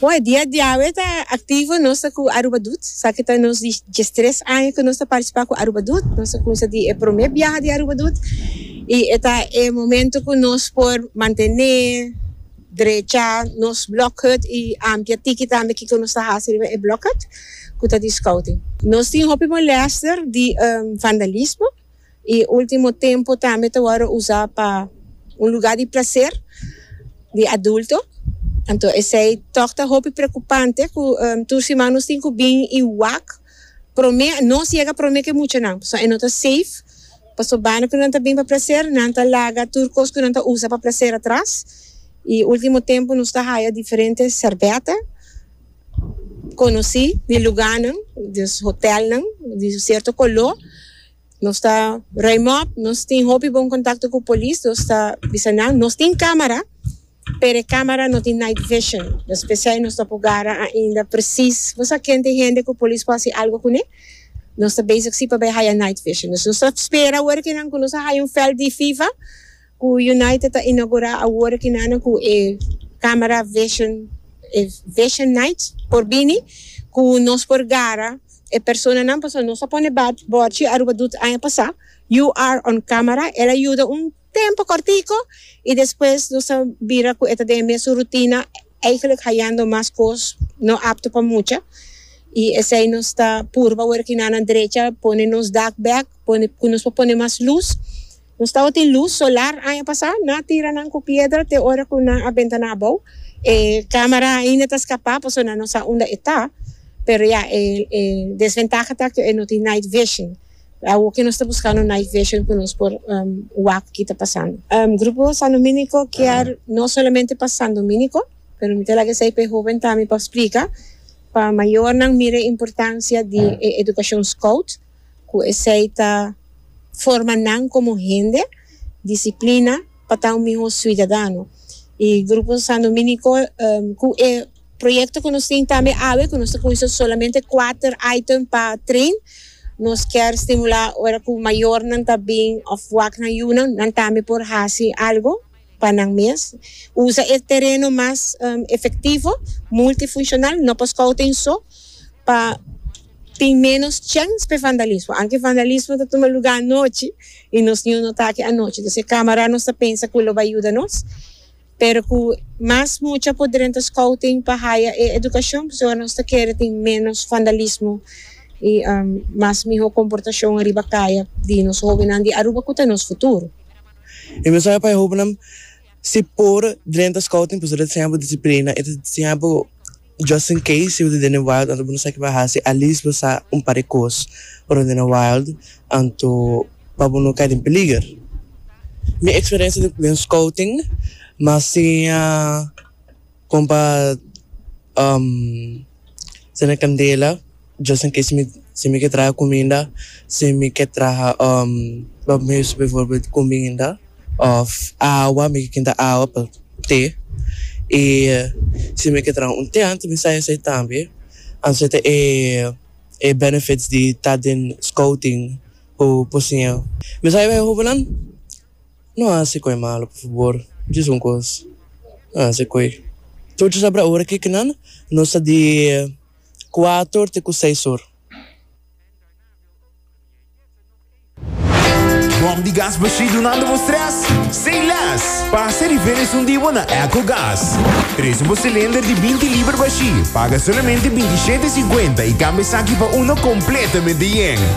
Bon, e dia diawe ta aktivo nos ta ku Aruba Dut. Sa ki ta nos di diestres aña ku nos ta partisipá ku Aruba Dut. Nos a kumsa di e promé biaha di Aruba Dut i e ta e momentu ku nos por mantené drecha nos blòk hut i ampia tiki tambe kiko nos ta hasi riba e blòk hut ku ta di skouting. Nos tin hopi molèster di vandalismo. I ultimo tempu tambe ta wòrdu usá pa un lugá di plaser di adulto. Anto esei tòg ta hopi preokupante ku tur siman nos tin ku bin i wak promé, nos yega promé ku e muchanan. Pasobra e no ta seif, pasobana ku nan ta bin pa plaser, nan ta laga tur kos ku nan ta usa pa plaser atras. I ultimo tempu nos ta haya diferente sèrbèta konosí di lugánan, di hotèlnan di un sierto koló. Nos ta ruim op, nos tin hopi bon contacto cu polis, nos ta bisa nan, nos tin camera, pero e camera no tin night vision, dus p'esey nos no por gara ainda precies bosa ken t'e hende cu polis por haci algo cune, nos ta bezig si pa bay haya night vision, nos ta spera ora kinan cu nos a haya un veld di FIFA. Ku United ta inaugurá awor kinana ku e Camera Vision e Vision Night por bini ku nos por gara e personanan pasobra nos a pone bòrchi Aruba Doet aña pasá You are on camera el a yuda un tempu kòrtiku i despues nos a bira ku e ta den e mesun rutina eihgelijk hayando mas kos no apto pa mucha i esei nos ta purba awor kinana drecha pone nos dak bèk pone ku nos por pone mas lus. Nos tabatin luz solar aña pasá, na tira nan cu piedra te ora cu nan a bentana abou, e camera ainda ta scapá pasobra nan no sa unda e ta, pero ya e e desventaha ta cu e no tin night vision, awo cu nos ta buscando night vision cu nos por wak cu kita pasando. Grupo San Dominico kier no solamente pa San Dominico, pero mi ta laga esey pa e hoben tambe pa splica, pa mayornan mira e importancia di e educacion scout, Cu esey ta forma nan como hende disciplina pa ta un miho ciudadano. Y Grupo San Dominico cu e proyecto cu nos tin tambe awe cu nos ta cuinsa solamente kuater item pa train nos kier stimula ora cu mayornan ta bin of wak nan yunan nan tambe por haci algo. pa nan mes. Usa e tereno mas efektivo, multifunshonal, no pa skou tin so, pa tin ménos chèns p'e vandalismo, anke vandalismo ta tuma lugá anochi i nos niño no ta aki anochi, entonces e kámara nos ta pensa ku lo bai yuda nos, pero ku mas mucha por drenta skou tin pa haya e edukashon, p'esei ora nos ta kere tin ménos vandalismo i mas mihó komportashon riba kaya di nos hóbennan di Aruba ku ta nos futuro. E mensahe pa e hóbennan, Si por drenta Scouting pues lo ta siña bo disiplina, e ta siña bo just in case si bo ta den e wild anto bo no sa kiba hasi at least bo sa un par di kos pa lo den e wild anto pa bo no kai den peliger. Mi eksperensia den Scouting m'a siña. Kon pa sende kandela, Dios a kis mi si mi ke traha kuminda, si mi ke traha pa mi mes bivorbit kuminda òf awa, mi ke kinda awa pa te, i si mi ke traha un tènt mi sai esei tambe. Anto esei ta e benefits di ta den scouting ku por siña. Mi sai bai e hobennan. No hasi koe malo por fabor. Djis un kos, no hasi koe. Tochi sabra ora ke kinan nos ta di kuator te ku seis or. Bòm di gas Bashri dunando bo strès? Sin lès! Pasa e diferens un di bo na Ecogas. Trese bo silinder di binti liber Bashri, paga solamente binti shete e sinkuenta i kambia esaki pa uno kompletamente yen.